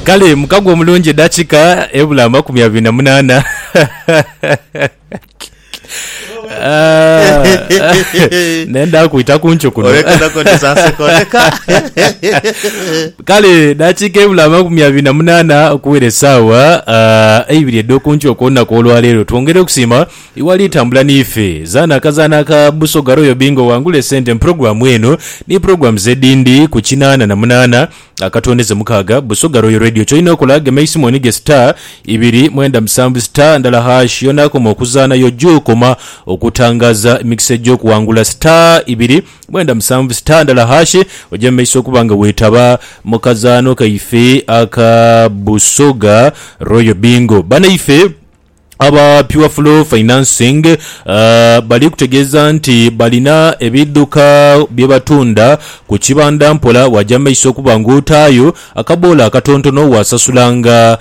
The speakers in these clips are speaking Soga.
Kale mukago omulungi edakika ebula amakumi abiri na munana. Ah, nenda kwita kuncu kuno kale dakika ebula amakumi abiri na munana okuwera esawa ah, eibiri edhokuncu okulunaku olwalero twongere okusima Iwali tambula niife. Zaana akazaanho aka Busoga Royal Bingo owangule esente mu pulogulaamu eno ni pulogulamuzi edhindi ku kinaana na munaana akatondeze mukaaga. Busoga Royal Radio ky'olina okola gema eisimu onige star ibiri mwenda musanvu star ndala hash y'onaakoma okuzaana y'oja okoma okutangaaza emikisa egy'okuwangula star ibiri mwenda musanvu star ndala hash oje mu maiso okuba nga weetaba mu kazaanho kaife aka Busoga Royal Bingo. Banaife. Aba Pure Flow Financing bali kutegeeza nti balina ebidhuka bye batunda ku kibanda mpola bwaja mu maiso okuba ng'otaayo akaboola akatontono waasasulanga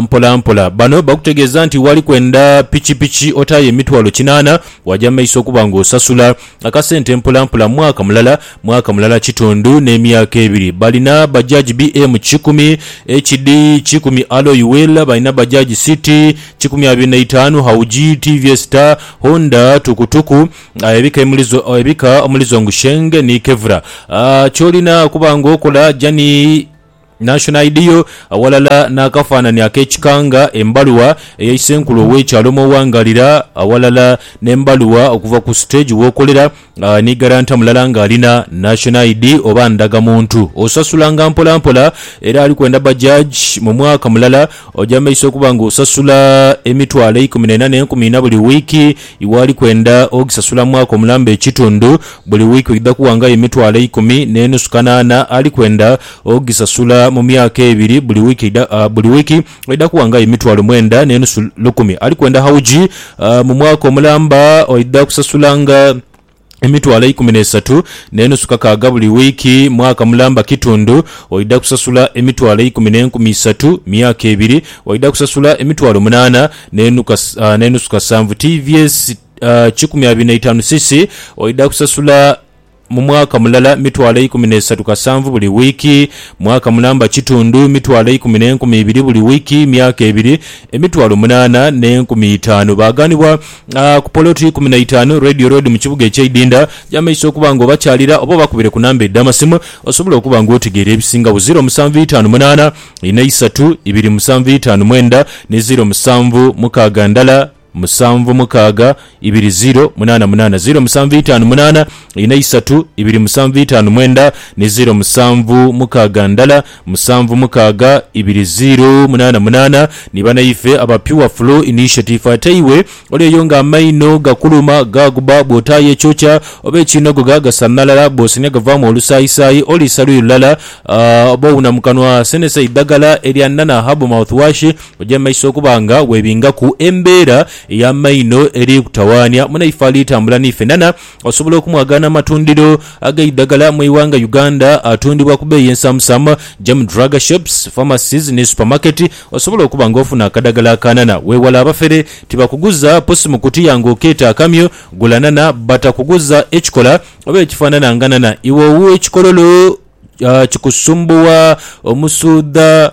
mpolampola. Bano bakutegeeza nti wali kwenda pikipiki otaayo emitwalo kinaana bwaja mu maiso okuba ng'osasula akasente mpolampola mwaka mulala, mwaka mulala kitundu n'emyaka ebiri. Balina Bajaj BM kikumi, HD kikumi Alloy Wheel, balina Bajaj City kikumi abiri na itaanu, Hauji, TVS Star, Honda, Tukutuku, ebika omuli zo ebika omuli Zhongsheng ni Kevlar. Ky'olina okuba ng'okola, Jani. National ID yo, aghalala n'akafaananhi ak'ekikanga, embaluwa eya isenkulu ow'ekyalo mw'oghangaalira, aghalala n'embaluwa okuva ku siteegi w'okolera, ni garanta mulala ng'alina National ID oba ndagamuntu. Osasulanga mpolampola era ali kwenda Bajaj mu mwaka mulala oja mu maiso okuba ng'osasula emitwalo eikumi n'ena n'enkumi ina buli wiiki, iwe ali kwenda ogisasula mwaka omulamba ekitundu, buli wiiki oidha kuwangayo emitwalo eikumi n'enusu kanaana ali kwenda Ogisasula mu myaka ebiri buli wiiki eidha buli wiiki eidha kuwa nga aye emitwalo mwenda n'enusu lukumi. Ali kwenda hawuji mu mwaka omulamba aidha kusasula nga emitwalo eikumi n'esatu n'enusu kakaaga buli wiiki. Mwaka mulamba kitundu aidha kusasula emitwalo eikumi n'enkumi isatu. Myaka ebiri aidha kusasula emitwalo munaana n'enusu kasanvu. Tvs kikumi abiri n'eitaanu cc aidha kusasula. mu mwaka mulala mitwalo eikumi n'eisatu kasanvu buli wiiki, mwaka mulamba kitundu, mitwalo eikumi n'enkumi ibiri buli wiiki, myaka ebiri, emitwalo munaana n'enkumi itaanu. Baaghanibwa ku poloti ikumi na itaanu Radio Road mu kibuga eky'e Idinda. Yamaiso okuba nga obakyalira oba obakubire ku namba edh'amasimu osobole okuba nga otegeera ebisingagho, ziro musanvu itaanu munaana ina isatu ibiri musanvu itaanu mwenda ni ziro musanvu mukaaga ndala. musanvu mukaaga ibiri ziro munaana munaana ziro musanvu itaanu munaana ina isatu ibiri musanvu itaanu mwenda ni ziro musanvu mukaaga ndala musanvu mukaaga ibiri ziro munaana munaana ni banaife aba Pure Flu Initiative ate iwe oli eyo nga amaino gakuluma gaguba bwotaayo ekyokya oba ekiinogoga gasanhalala bwosenia gavaamu olusaayisaayi oliisa luyi lulala oba owuna mukanwa senesa eidhagala elya Nana Herbal Mouthwash Oja mu maiso okuba nga webingaku embeera ey'amaino eri kutawaanya munaife ali tambula n'ife. Nana osobola okumwagaana amatundiro ag'eidhagala mu ighanga Uganda atundibwa ku beeyi ensaamusaamu ja mu drug shops, pharmacies ni supermarket. Osobola okuba nga ofuna akadhagala aka nana. Weewale abafere, tibakuguza pusi mu kutiya nga okeeta akamyu. Gula nana bata kuguza ekikola oba ekifaanana nga nana. Iwe ow'ekikololo kikusumbuwa omusuudha.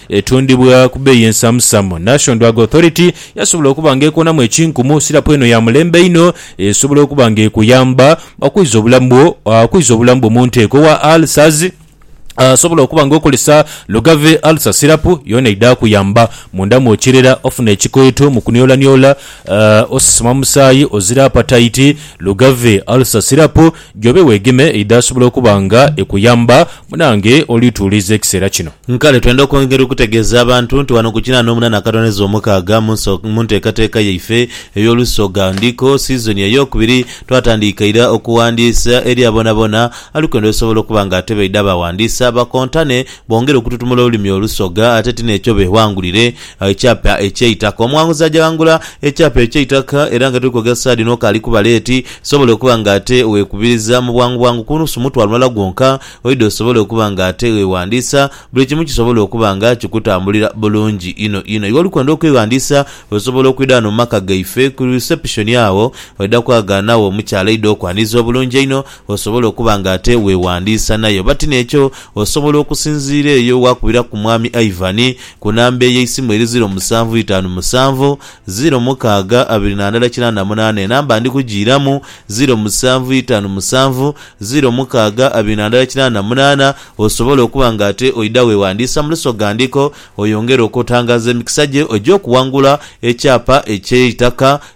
Etundibwa ku beeyi ensamusamu. National Drug Authority yasobola okuba nga ekonamu ekinkumu. Sirapu eno ya mulembe inho esobola okuba nga ekuyamba okwiza obulamu bwo, okwiza obulamu bwo mu nteeko. Owa ulcers asobola okuba nga okozesa Lugave Ulcer Sirapu, yoona eidha kuyamba munda mw'okirera ofuna ekikweto mu kuniolaniola, osesema musaayi, ozira apataiti. Lugave Ulcer Sirapu Gy'obe weegeme eidhaasobola okuba nga ekuyamba. Munange oli tuwuliriza ekiseera kino. Kale twenda okwongera okutegeeza abantu nti wano ku kinaana omunana akatoneza omukaaga mu nso mu nteekateeka yaife ey'olusoga ndiko siizoni ey'okubiri twatandiika ira okuwandiisa eri aboonaboona ali kwenda osobola okuba nga atebaidha bawandiisa bakontane bongere okututumula olulimi olusoga ate ti n'ekyo beewangulire Ekyapa eky'eitaka. Omwanguzi ajaghangula ekyapa eky'eitaka era nga tuli kwogera saha dhino kaali kuba leeti, sobole okuba nga ate weekubiriza mu bwangu bwangu ku nusu mutwalo mulala gwonka oidhe osobole okuba nga ate weeghandiisa, buli kimu kisobole okuba nga kikutambulira bulungi inho inho. Iwe oli kwenda okweghandiisa, osobola okwidha ghano mu maka gaife ku risepushoni agho, oidha kwaghanagho omukyala aidha okwaniriza obulungi einho Osobola okuba nga ate weewandiisa naye oba ti n'ekyo, osobola okusinziira eyo waakubiraku Mwami Ivan ku namba ey'eisimu eri ziiro musanvu itaanu musanvu, ziiro mukaaga abiri na ndala kinaana munaana. Enamba ndi kugiiramu, ziiro musanvu itaanu musanvu, ziiro mukaaga abiri na ndala kinaana munaana. Osobola okuba nga ate oidha weewandiisa mu lusoghandhiko oyongere okutangaaza emikisa gye egy'okuwangula ekyapa eky'eitaka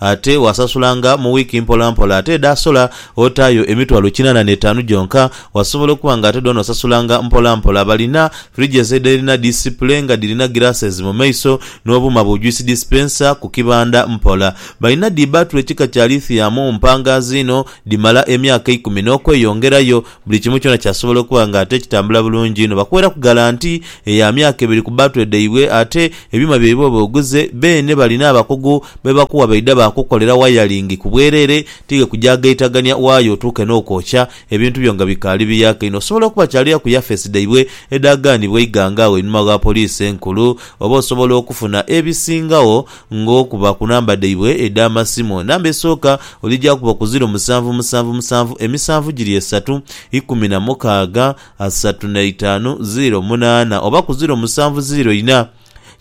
Ate waasasulanga mu wiiki mpolampola. Ate edhaasola otaayo emitwalo kinaana n'etaanu gyonka. Wasobola okuba nga ate dhoona osasulanga mpolampola. Balina fridges edhirina disipule nga dhirina glasses mu maiso n'obuuma bu juice dispenser ku kibanda mpola. Balina dhi batule kika kya lithium mpangaazi inho, dhimala emyaka eikumi n'okweyongerayo. Buli kimu kyona kyasobola okuba nga ate kitambula bulungi inho. Bakuweraku galanti ya myaka ebiri ku battery dhaibwe ate ebyuma byaibwe oba oguze beene balina abakugu be bakuwa baidha baakukukolera wayalingi ku bwereere tighe kugya gaitagania waaya otuuke n'okwokya ebintu byo nga bikaali biyaaka inho. Osobola okuba kyalira ku yafeesi dhaibwe edhagaanibwa eighanga agho einhuma gha Poliisi Enkulu oba osobola okufuna ebisingagho Ng'okuba ku namba dhaibwe edh'amasimu. Namba esooka oligyakuba ku ziro musanvu musanvu musanvu emisanvu giri esatu ikumi na mukaaga asatu na itaanu ziro munaana oba ku ziro musanvu ziro ina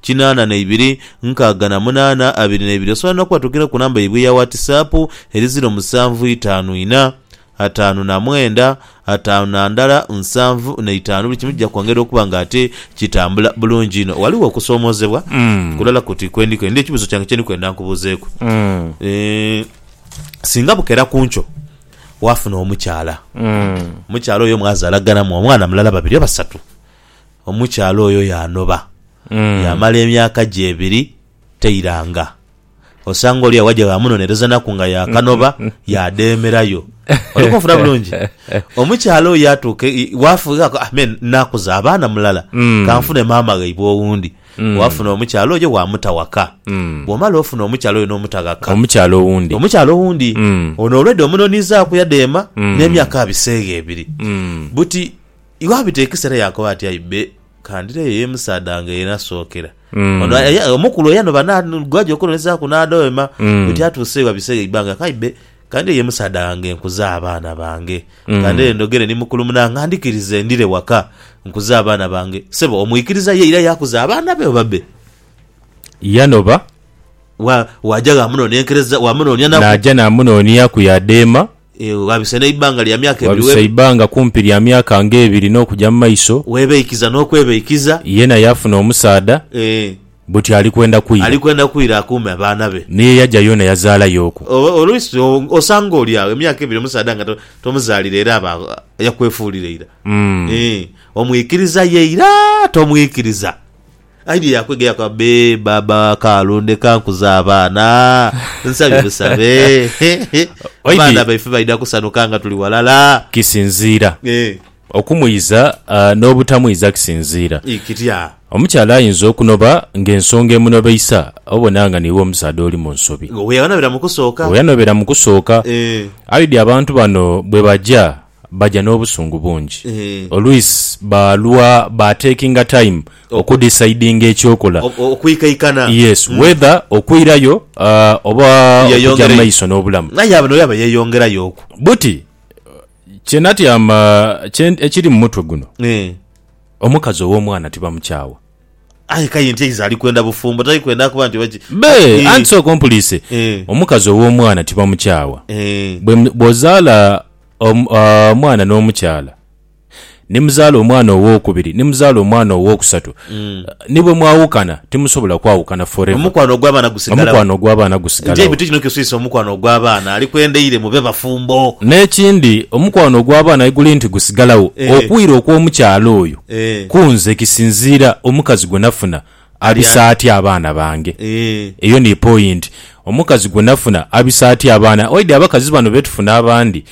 kinaana na ibiri nkaaga na munaana abiri na ibiri. Osobola n'okubatukira ku namba yaibwe eya Whatsap eri ziro musanvu itaanu ina ataanu na mwenda, ataanu na ndala, nsanvu na itaanu, buli kimu kija kwongera okuba nga ate kitambula bulungi inho. Ghaligho okusoomoozebwa kulala kuti kwe ndi kwenda, ekibuuzo kyange kye ndi kwenda nkubuuzeeku. Singa bukera ku nkyo waafuna omukyala, omukyala oyo mwazaalaganamu omwana mulala, babiri oba basatu. Omukyala oyo yaanoba, yaamala emyaka gye ebiri tairanga. osanga oli awaja baamunonerezaanaku nga yaakanoba yaadheemerayo. Oli kunfuna bulungi? Omukyala oyo yaatuuka e, i, waafugha aka, ah, me naakuza abaana mulala, kanfune maama ghaibwe owundi. Waafuna omukyala oyo waamuta ghaka. Bw'omala ofuna omukyala oyo n'omuta ghaka. Omukyala owundi. Omukyala owundi. Ono olwedha omunonizaaku yadheema n'emyaka abiseegho ebiri. Buti. Iwe abita ekisera yakoba ati aibe kandireyo yemusaadha wange yenasookera Mm. ono aya- aya- omukulu eyanoba na- gwaja okunonezaku nadoema Mm. bweti atuuse wabise eibanga ati aibe kandireyo yemusaadha wange nkuze abaana bange Mm. kandireyo ndhogere ni mukulu munange andhikirize ndire waka nkuze abaana bange sebo omwikiriza ye ira yakuza abaana be oba be Yanoba Wa- waja wamunonenkereza wamunonia naku naja namunooniaku yadeema Ewe ghabisa n'eibanga lya myaka ebiri Ghabisa webe. eibanga kumpi lya myaka nga ebiri n'okuja mu maiso, Webeikiza n'okwebeikiza. yena yaafuna omusaadha, Ee. buti ali kwenda kwira. Ali kwenda kwira akuume abaana be. Ni ye yaja yoona yazaalayo oku. O, oluisi o, osanga oli agho emyaka ebiri omusaadha nga to, tomuzaalira era aba agho, yakwefuulira ira. Mm. Ee. Omwikiriza ye ira tomwikiriza. Aidye yakwega yakoba, Bee, baaba wa Kaalu, ndeka nkuze abaana. Nsabye busabe. Waidhi- Abaana baife baidha kusanhuka nga tuli ghalala. Kisinziira. Eh, Okumwiza ah, n'obutamwiza kisinziira. ii, kitya? Omukyala ayinza okunoba ng'ensonga emunobeisa obona nga niiwe omusaadha oli mu nsobi. Nga weyanobera mu kusooka. Weyanobera mu kusooka. Eh, Aidye abantu bano bwe baja Baja n'obusungu bungi. Olwisi baalwa ba takinga time okudisaidinga eky'okola. Okwikaikana. Yes, whether okwirayo oba okuja mu maiso n'obulamu. Aye abo n'olaba yeyongerayo oku. Buti, kye natyama kye nti ekiri mu mutwe guno, omukazi ow'omwana tibamukyawa. Aye k'aye nti eizo ali kwenda bufumbo, tali kwenda kuba nti oba ki. Be, anti sooka ompuliise. Omukazi ow'omwana tibamukyawa. Bw'ozaala omwana n'omukyala ni muzaala omwana ow'okubiri ni muzaala omwana ow'okusatu mm. ni bwe mwawukana timusobola kwawukana forever omukwano ogw'abaana gusigalawo omukwano ogw'abaana gusigalawo nti ebintu kino kiswisa omukwano ogw'abaana ali kwendeire mube bafumbo n'ekindi omukwano ogw'abaana guli nti gusigalawo eh. okwira okw'omukyala oyo eh. kunze kisinziira omukazi gwe nafuna abisa atya abaana bange? Eeh. Eyo ni point. Omukazi gwe nafuna abisa atya abaana? Oidhi abakazi bano be tufuna abandi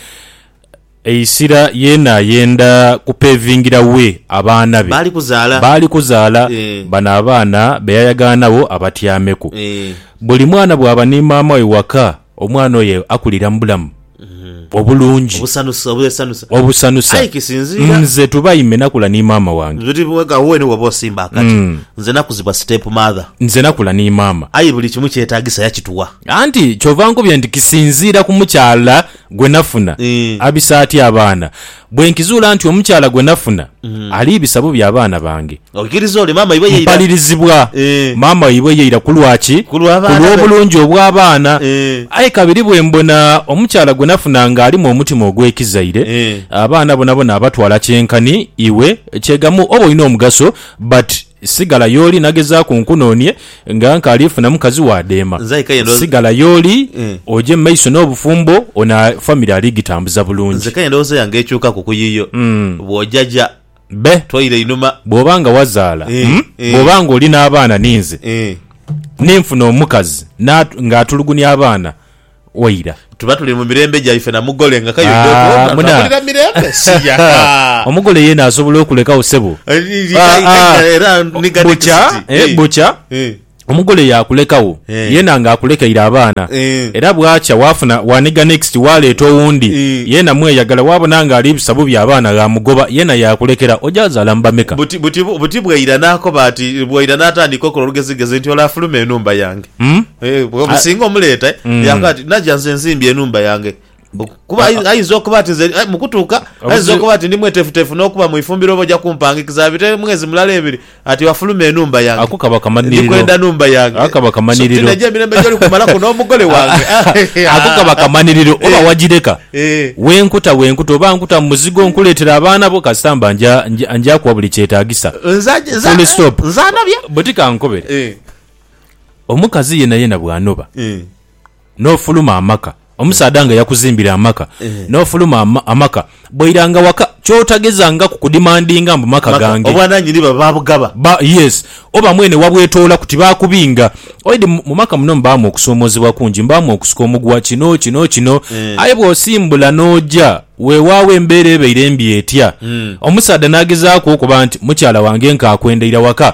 eisira yeena ayenda ku pevingira we abaana be. Baali kuzaala. Baali kuzaala. Eeh. Bano abaana be yayagaanagho abatyameku. Eeh. Buli mwana bwaba ni maama we waka Omwana oyo akulira mu bulamu obulungi, Obusanusa, obwesanusa. obusanusa. Aye kisinziira. Nze Tubaime nakula ni maama wange. Biri bwega wuwe ni woba osimba akati. Nze nakuzibwa step mother. Nze nakula ni maama. Aye buli kimu kyetagisa yakituwa. Anti kyova nkubye nti kisinziira ku mukyala gwe nafuna. Abise atya abaana. Bwe nkizuula nti omukyala gwe nafuna ali bisabo bya baana bange, Oikiriza ole maama waibwe ye ira? mpalirizibwa Eh. maama waibwe ye ira. Ku lwa ki? Ku lwa baana be. lw'obulungi obw'abaana. Eh. Aye kabiri bwe mbona omukyala gwe nafuna ng'alimu omutima ogw'ekizaire, Eh. abaana bonabona abatwala kyenkani iwe. Kyegamu oba olina omugaso but Sigala y'oli, nagezaaku nkunoonie, nga nkaali funa mukazi wa dheema. Nze aye kaye ndowooza. Sigala y'oli, Eh. oje mu maiso n'obufumbo, ono famire ali gitambuza bulungi. Nze kaye endowooza yange ekyukaku ku yiyo. Bw'ojaja, Be. twaira einhuma. Bw'oba nga wazaala, Eh, mm, eh. bw'oba nga oli n'abaana ni nze, Eh. ni nfuna omukazi n'atu, ng'atulugunia abaana, waira. Tuba tuli mu mirembe gyaife na mugole nga kayo yona yona tulamulira mirembe siya. Omugole yena asobola okulekagho ssebo. Bukya bukya omugole yakulekagho yena nga akulekeire abaana era bwakya wafuna waniga next waleeta owundi yena mweyagala wabona nga ali bisa bubi abaana ghamugoba yena yakulekera oja zaala mu bameka? Buti bwaira nakoba ati bwaira natandika okola olugezigezi nti ole afulume enhumba yange. Mm? Eh, bwe musinga omuleeta eh, Mm. yaakoba ati naja nze nzimbye enhumba yange Oku- kuba ayi- ayinza okuba ati nze eh, mu kutuuka ayinza Obuzibu- okuba ati ndi mwetefutefu n'okuba mu ifumbiro oba oja kumpangikiza abite mwezi mulala ebiri ati wafuluma enhumba yange Ako kaba kamaniriro. ndikwenda nhumba yange Ako kaba kamaniriro. So, tinaja emirembe gyoli kumalaku n'omugole wange ako kaba kamaniriro oba Eh. wagireka Eh. wenkuta wenkuta oba nkuta mu muzigo nkuleetera abaana bo kasita mba nja- nja- njakuwa buli kyetaagisa Nza- nza- Full stop. nzanabya bwe tikankobere Eh. Omukazi yenayena bw'anoba n'ofuluma amaka, omusaadha nga yakuzimbira amaka n'ofuluma amaka, bw'oiranga waka ky'otagezangaku kudimandinga mbu maka gange. Obwananyini baba babugaba. Ba, yes. Oba mwene wabwetoolaku, tibakubinga. Oidi mu maka muno mubaamu okusoomoozebwa kungi, mubaamu okusika omuguwa, kino, kino, kino. Aye bw'osimbula n'oja, weewaawo embeera ebaire mbi etya, omusaadha n'agezaaku okuba nti, mukyala wange nk'akwendaira waka,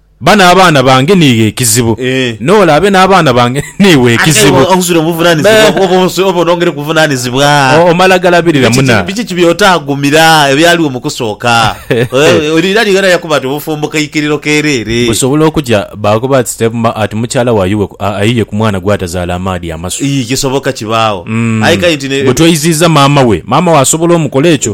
Ba n'abaana bange niiwe ekizibu. N'ole abe n'abaana bange niiwe ekizibu. Omala galabirira muna. Busobola okuja baakoba ati stepmma ati mukyala wa Yuwe ayiye ku mwana gw'atazaala amaadhi amasu. Bwe tweyiziiza maama we, maama we asobola omukola ekyo?